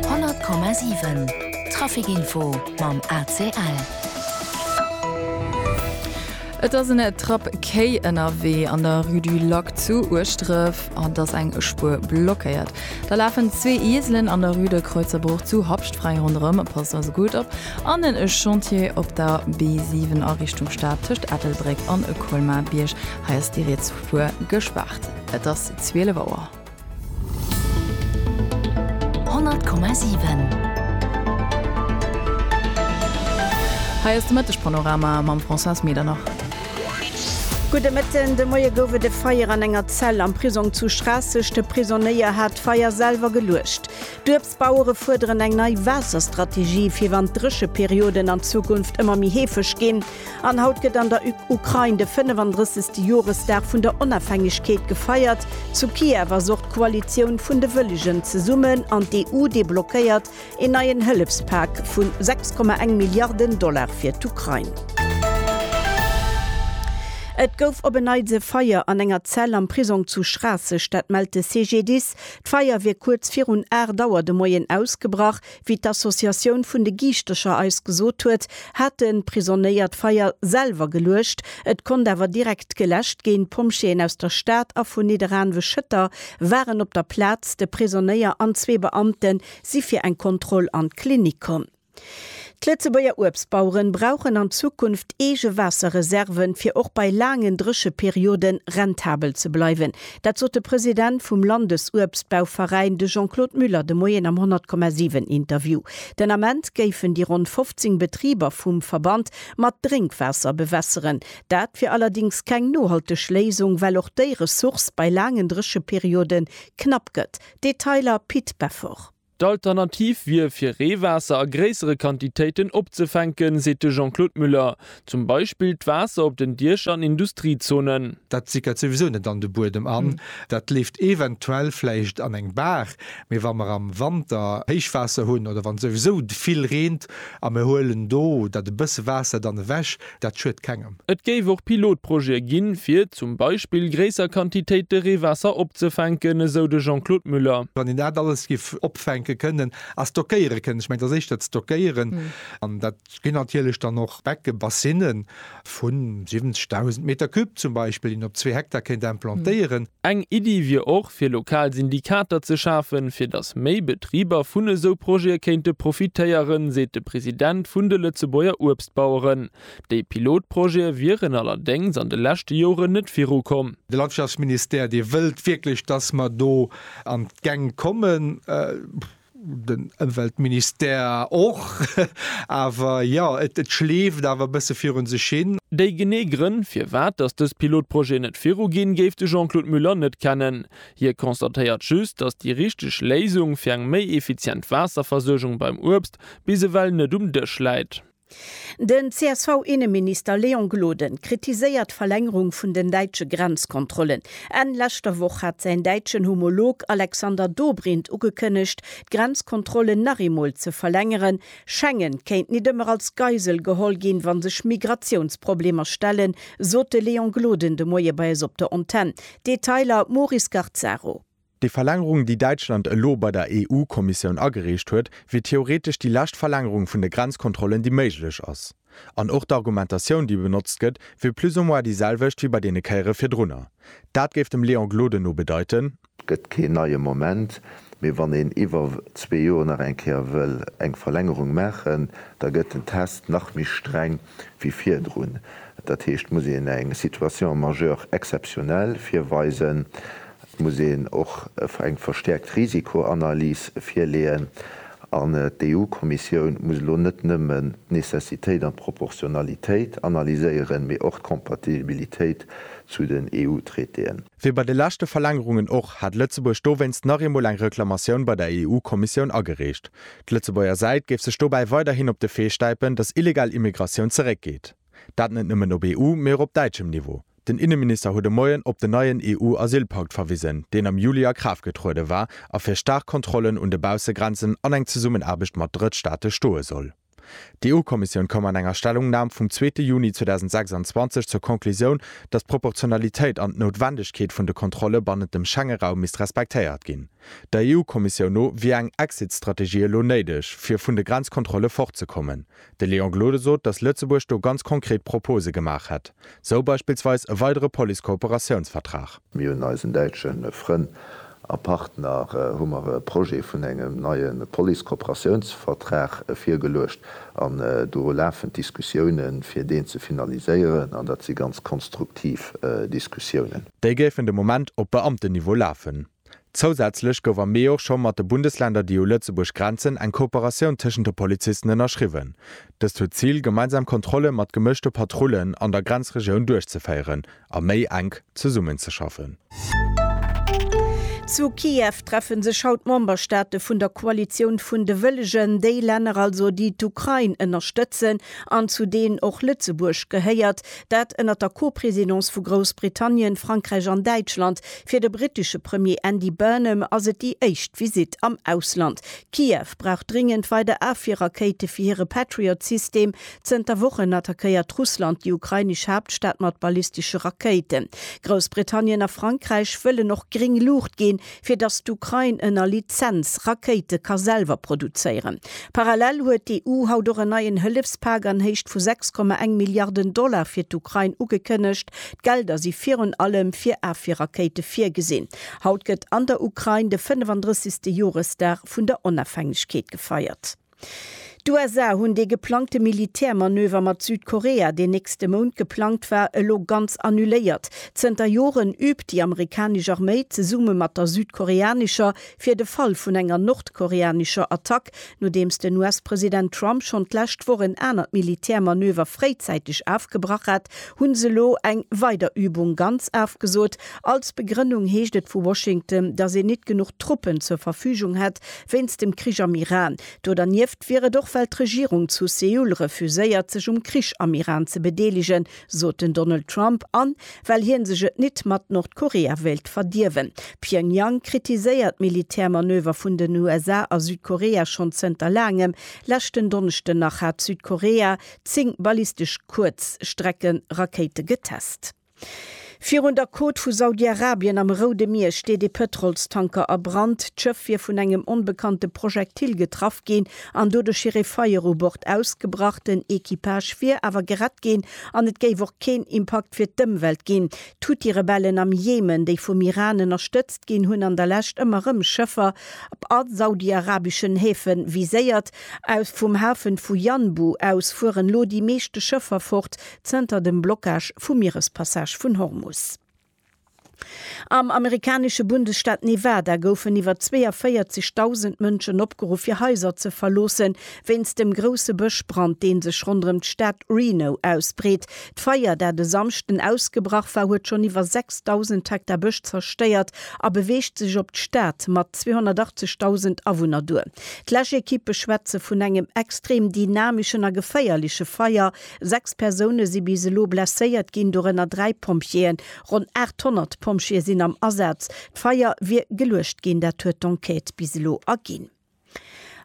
100,7 Trafic info mam ACL. Et ass en Trapp Quai ënnerwee an der Rue du Lac zu Ueschdref an dass eng Spuer blockéiert. Da lafen zwee Ieselen an der Rue de Kreuzerbruch zu Habscht fräi ronderëm. Passt also gutt op an en Chantier op der B7 a Richtung Stad tëscht Ettelbréck an Colmar-Bierg. Hei ass déi riets Spuer gespaart. Et ass 12 Auer. 100,7. Hei ass de Mëtteg-Panorama mam Françoise Medernach. Gudde Mëtten. De Moie gouf et e Feier an enger Zell am Prisong zu Schraasseg. De Prisonnéier hat d'Feier selwer geluecht. D'Bauere fuerderen eng nei Waasserstrategie fir wann d'Drécheperioden an Zukunft ëmmer méi heefeg ginn. An haut gëtt an der Ukrain de 35. Joresdag vun der Onafhängegkeet gefeiert. Zu Kiew ass och d'Koalitioun vun de Wëllegen zesummen an d'EU deblockéiert een neien Hëllefspak vu 6,1 Milliarden Dollar fir d'Ukrain. Et gouf op en Neits e Feier an enger Zell am Prisong zu Schraasseg, dat mellt de CGDIS. D'Feier wier kuerz virun 8 Auer de Moien ausgebrach. Wéi d'Associatioun vun de Giischtecher eis gesot huet, haten d'Prisonéier d'Feier selwer geluecht. Et konnt awer direkt geläscht ginn. D'Pompjeeën aus der Stad a vun Nidderaanwe-Schëtter waren op der Plaz. De Prisonéier an zwee Beamte si fir eng Kontroll an d'Klinik komm. D'Lëtzebuerger Uebstbaueren brauchen an Zukunft eege Waasserreserven, fir och bei laangen Drécheperioden rentabel ze bleiwen. Dat sot de President vum Landesuebstbauveräin, de Jean-Claude Muller, de Moien am 100,7 Interview. Den Ament géifen déi ronn 15 Betriber vum Verband mat Drénkwaasser bewässeren. Dat wier allerdéngs keng nohalteg Léisung, well och déi Ressource bei laangen Drécheperioden knapp gëtt. Detailer Pit Beffort. D'Alternativ wier, fir Reewaasser a gréissere Quantitéiten opzefänken, seet de Jean-Claude Muller. Zum Beispill d'Waasser op den Diecher an Industriezonen. Dat sickert souwisou net an de Buedem an. Dat leeft eventuell vläicht an eng Baach. Mee wa mer am Wanter Héichwaasser hunn oder wann souwisou vill reent a mir huelen do dat e bësse Waasser dann ewech, Dat schued kengem. Et géif och Pilotprojete ginn, fir zum Beispill gréisser Quantitéite Reewaasser opzefänken, esou de Jean-Claude Muller. Wann een dat alles géif opfänke kënnen a stockéiere kënnen, ech mengen, et ass éischter d'Stockéieren, an dat ginn natierlech dann och Beckebassine vu 70.000 Meter cube zum Beispill, déi een op zwee Hektar kéint implantéieren. Eng Iddi wier och, fir lokal Syndikater ze schafen, fir datt méi Betriber vun esou Projete kéinte profitéieren, seet de President vun de Lëtzebuerger Uebstbauereveräiner. d'Baueren. Déi Pilotprojete wieren allerdéngs an de leschte Joren net virukomm. De Landwirtschaftsministère, dee wëllt wierklech, dass mer do an d'Gäng kommen, den Ëmweltministère och, awer jo, et schleeft awer e bësse viru sech hin. Déi genee Grënn, firwat dass dës Pilotprojete net viruginn, géif de Jean-Claude Muller net kennen. Hie constatéiert just, dass déi richteg Léisung fir eng méi effizient Waasserversuergung beim Uebst bis ewell net um Dësch läit. Den CSV-Inneminister Léon Gloden kritiséiert d'Verlängerung vun den däitsche Grenzkontrollen. Enn leschter Woch hat säin däitschen Homolog Alexander Dobrindt ugekënnegt, d'Grenzkontrollen nach eemol ze verlängeren. Schengen kéint nit ëmmer als Geisel geholl ginn, wa sech Migratiounsproblemer stellen, sot de Léon Gloden de Moie bei eis op der Antenn. Detailer Maurice Garzaro. Déi Verlängerung, déi Däitschland elo bei der EU-Kommissioun agereecht huet, wier theoretesch déi lescht Verlängerung vun de Grenzkontrollen, déi méiglech ass. An och d'Argumentatioun, déi benotzt gëtt, wier plus ou moins déi selwecht wéi bei deene Kéiere virdrunner. Dat géif dem Léon Gloden no bedeiten, Et gëtt keen neie Moment, mee wann een iwwer zwee Joer nach eng Kéier wëll eng Verlängerung maachen, da gëtt den Test nach méi streng. wéi virdrun. Dat heescht, et muss een eng Situation majeure exceptionnelle virweisen, et muss een och eng verstäerkt Risikoanalys virleeën an d'EU-Kommissioun muss elo net nëmmen d'Necessitéit an d'Proportionalitéit analyséieren, mee och d'Compatibilitéit zu den EU-Traitéen. Wéi bei de leschte Verlängerungen och, hat Lëtzebuerg dowéinst nach eemol eng Reklamatioun bei der EU-Kommissioun agereecht. D'Lëtzebuerger Säit géif sech dobäi weiderhin op de Fee stäipen, datt illegal Immigratioun zeréckgeet. Dat net nëmmen op EU-, mee och op däitschem Niveau. Den Inneminister huet e Moien op den neien EU-Asylpakt verwisen, deen am Juli a Kraaft getruede war a fir staark Kontrollen un de Baussegrenzen an eng Zesummenaarbecht mat Drëttstaate stoe soll. D'EU-Kommissioun koum an enger Stellungnam vum zweete Juni 2026 zur Conclusioun, datt d'Proportionalitéit an d'Noutwendegkeet vun de Kontrolle bannent dem Schengeraum misst respektéiert ginn. Der EU-Kommissioun no wier eng Exit-Strategie elo néideg, fir vun de Grenzkontrolle fortzekommen. De Léon Gloden sot, datt Lëtzebuerg do ganz konkret Propose gemaach hätt, sou beispillsweis e weidere Police-Kooperatiounsvertrag. Mir hunn eisen däitsche Frënn a Partner hu mer e Projet vun engem neie Police-Kooperatiounsvertrag virgeluecht an do lafen d'Diskussiounen, fir deen ze finaliséieren an dat si ganz konstruktiv Diskussiounen. Déi géifen de Moment op Beamtenniveau lafen. Zousätzlech gouf am Mee och scho mat de Bundesländer, déi u Lëtzebuerg grenzen, eng Kooperatioun tëschent de Polizisten ënnerschriwwen. Dëst huet d'Zil, gemeinsam Kontrolle mat gemëschte Patrullen an der Grenzregioun duerchzeféieren, a méi enk zesummenzeschaffen. Zu Kiew treffe sech haut d'Memberstaate vun der Koalitioun vun de Wëllegen, déi Länner also, déi d'Ukrain ënnerstëtzen an zu deenen och Lëtzebuerg gehéiert. Dat ënnert der Co-Presidence vu Groussbritannien, Frankräich an Däitschland. Fir de brittesche Premier Andy Burnham ass et déi éischt Visitt am Ausland. Kiew brauch dringend weider Afwierrakéite fir hire Patriot-System, Zënter Wochen attackéiert Russland déi ukrainesch Haaptstad mat ballistesche Rakéiten. Groussbritannien a Frankräich wëllen och gréng Luucht ginn, fir datt d'Ukrain ënner Lizenz Rakéite ka selwer produzéieren. Parallel huet d'EU haut och en neien Hëllefspak an Héicht vu 6,1 Milliarden Dollar fir d'Ukrain ugekënnegt. D'Gelder si virun allem fir Afwierrakéite virgesinn. Haut gëtt an der Ukrain de 35. Joresdag vun der Onafhängegkeet gefeiert. D'USA hunn dee geplangte Militärmanöver mat Südkorea, deen nächste Mount geplangt war, elo ganz annuléiert. Zënter Joren üübt déi amerikanesch Arméi zesumme mat der südkoreanescher fir de Fall vun enger nordkoreanescher Attack, nodeems den US-President Trump schonn d'lescht Woch en anert Militärmanöver fréizäiteg afgebrach hat, hu se elo eng weider Übung ganz afgesot. Als Begrënnung heescht et vu Washington, datt een nit genuch Truppen zur Verfügung hätt, Wéinst dem Krich am Iran. Do dernieft wier et och well d'Regierung zu Seoul refuséiert sech um Krich am Iran ze bedeelegen, sot den Donald Trump, an well hien sech et nit mat Nordkorea wéilt verdierwen. Pyongyang kritiséiert d'Militärmanöver vun den USA a Südkorea schonn zënter laangem. Leschten Donneschden nach hat Südkorea 10 ballistesch Kuerzstreckerakéite getest. Virun der Côte vu Saudi-Arabien am Roude Mier steet ee Pëtrolstanker a Brand. D'Schëff wier vun engem onbekannte Projektil getraff ginn an doduerch wier ee Feier u Bord ausgebrach. Den Equipage wier awer gerett ginn an et géif och keen Impakt fir d'Ëmwelt ginn. D'Huthi-Rebellen am Jemen, déi vum Iran ënnerstëtzt ginn, hunn an der Lescht ëmmer erëm Schëffer a saudi-arabeschen Häfe viséiert. Vum Hafe vu Yanbu aus fueren elo déi meeschte Schëffer fort, zënter dem Blockage vum Mierespassage vun Hormus. Am amerikanesche Bundesstaat Nevada goufen iwwer 42.000 Mënschen opgeruff, hir Haiser ze verloossen, wéinst dem grousse Bëschbrand, dee sech ronderëm d'Stad Reno ausbreet. D'Feier, dat e Samschden ausgebrach war, huet schonn iwwer 6.000 Hektar Bësch zerstéiert a beweegt sech op d'Stad mat 280.000 Awunner duer. D'Läschekippe schwätze vun engem extrem dynameschen a geféierleche Feier, Sechs Persoune si bis elo blesséiert ginn, dorënner dräi Pompjeeën. Ronn 800 Pompjeeë sinn am Asaz. D'Feier wier geluecht ginn, dat huet d'Enquête bis elo erginn.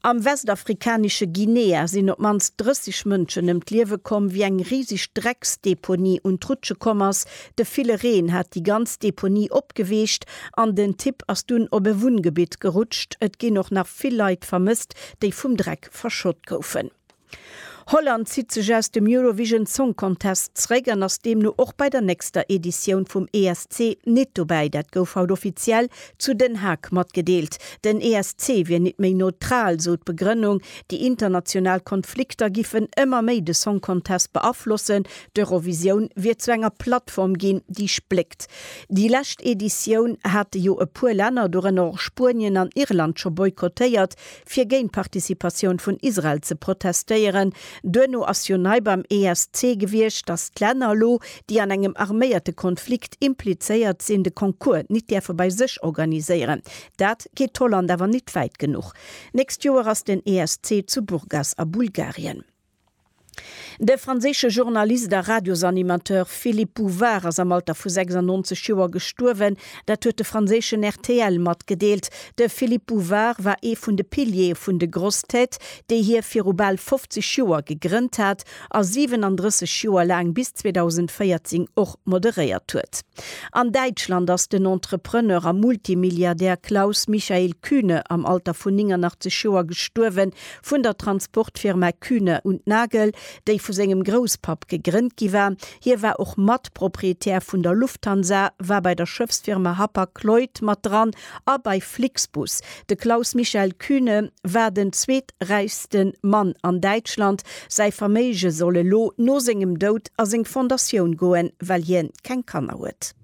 Am westafrikanesche Guinea sinn op d'mannst 30 Mënschen ëm d'Liewe komm, wéi eng riseg Drecksdeponie un d'Rutsche komm ass. De ville Reen hat déi ganz Deponie opgeweecht an den Tipp ass dunn op e Wunngebitt gerutscht. Et ginn och nach vill Leit vermësst, déi vum Dreck verschott goufen. Holland zitt sech aus dem Eurovision Song Contest zréck an ass deemno och bei der nächster Editioun vum ESC nit dobäi. Dat gouf haut offiziell zu Den Haag matgedeelt. Den ESC wier nit méi neutral, sou d'Begrënnung. Déi international Konflikter giffen ëmmer méi de Song Contest beaflossen. D'Eurovisioun wier zu enger Plattform ginn, déi spléckt. Déi lescht Editioun hate jo e puer Länner, dorënner och Spuenien an Irland, scho boykottéiert. fir géint d'Participatioun vun Israel ze protestéieren. Duerno ass jo nei beim ESC gewiescht, datt d'Länner elo, déi an engem arméierte Konflikt implizéiert sinn, de Concours nit däerfe bei sech organiséieren. Dat geet d'Holland awer nit wäit genuch. Nächst Joer ass den ESC zu Burgas a Bulgarien. De franséische Journalist a Radiosanimateur Philippe Bouvard ass am Alter vu 96 Joer gestuerwen. Dat huet de franséischen rtl matgedeelt. De Philippe Bouvard war ee vun de Piliere vun de Grosses Têtes, déi hie viru bal 50 Joer gegrënnt hat a 37 Joer laang, bis 2014, och moderéiert huet. An Däitschland ass den Entrepreneur a Multimilliardär Klaus Michael Kühne am Alter vun 89 Joer gestuerwen. vun der Transportfirma Kühne und Nagel, déi vu sengem Grousspapp gegrënnt gi war. Hie war och Matproprietär vun der Lufthansa, war bei der Schëffsfirma Hapag-Lloyd mat dran a bei Flixbus. De Klaus-Michael Kühne war den zweeträichste Mann an Däitschland. Säi Verméige soll elo no sengem Doud a seng Fondatioun goen, well hien keng Kanner huet.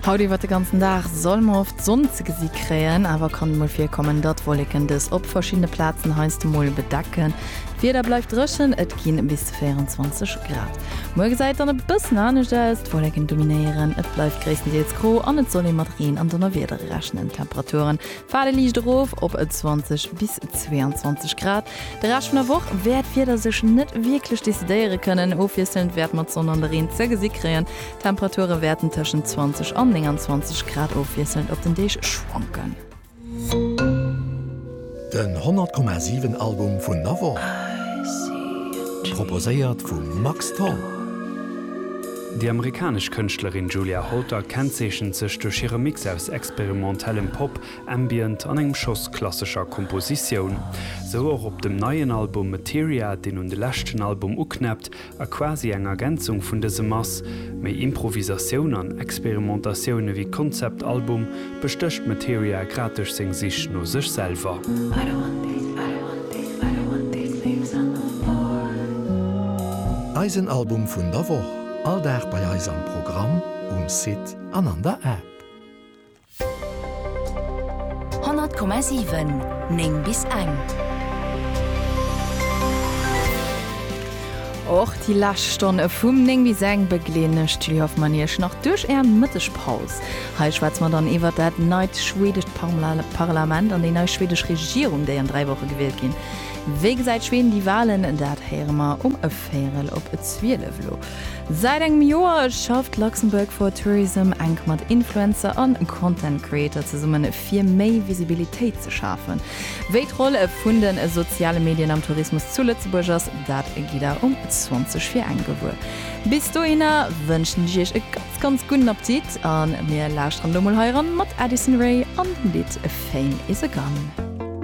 Haut iwwert de ganzen Dag soll mer oft Sonn ze gesi kréien, awer kann mol virkommen, datt Wolleken dës op verschiddene Plazen heiansdo mol bedecken. D'Wieder bleift dréchen, et gi bis zu 24 Grad. Muer gesäit dann e bëssen anescht aus, d'Wolleken dominéieren, et bleift gréisstendeels gro an et soll ee mat Reen an Donnerwieder rechnen. D'Temperature Faart liicht erof op 20 bis 22 Grad. De Rescht vun der Woch wäert d'Wieder sech net wierklech decidéiere kënnen. Ofwiesselnd wäert mer d'Sonn an de Reen ze gesi kréien. D'Temperature wäerten tëschent 20 an 29 Grad ofwiesselnd op den Deeg schwanken. Den 100,7 Album vun der Woch proposéiert vum Max Tholl. Déi amerikanesch Kënschtlerin Julia Holter kennzeechent sech duerch hire Mix aus experimentellem Pop, Ambient an engem Schoss klassescher Kompositioun. Sou och op dem neien Album Materia, deen un de leschten Album uknäppt a quasi eng Ergänzung vun dësem ass. Méi Improvisatioun an Experimentatioun ewéi Konzeptalbum Bestécht d'Materia grad duerch seng Sich no sech selwer? Eisen Album vun der Woch, all Dag bei eis am Programm, um Site an an der App. 100,7 9 bis eng. Och déi lescht Stonne vum 9 bis eng begleeden ech, d'Julie Hoffmann, Iech nach duerch Är Mëttegpaus. Hei schwätze mer dann iwwert dat neit schwedescht Parlament an déi nei schwedesch Regierung, déi an dräi Woche gewielt ginn. Wéi gesäit Schweden déi Walen? Dat héiere mer um Véierel op zwielef. Elo säit engem Joer schafft Luxembourg for Tourism enk mat Influencer a Content Creator zesummen, fir méi Visibilitéit ze schafen. Wéi d'Roll vun de soziale Medien am Tourismus zu Lëtzebuerg ass, dat gitt der um 20 fir eng gewuer. Bis dohinner wënschen ech Iech e ganz. Ganz gudden Aptit an mir lauschteren elo mol hei eran mat Addison Rae an dem Lidd Fame is a Gun.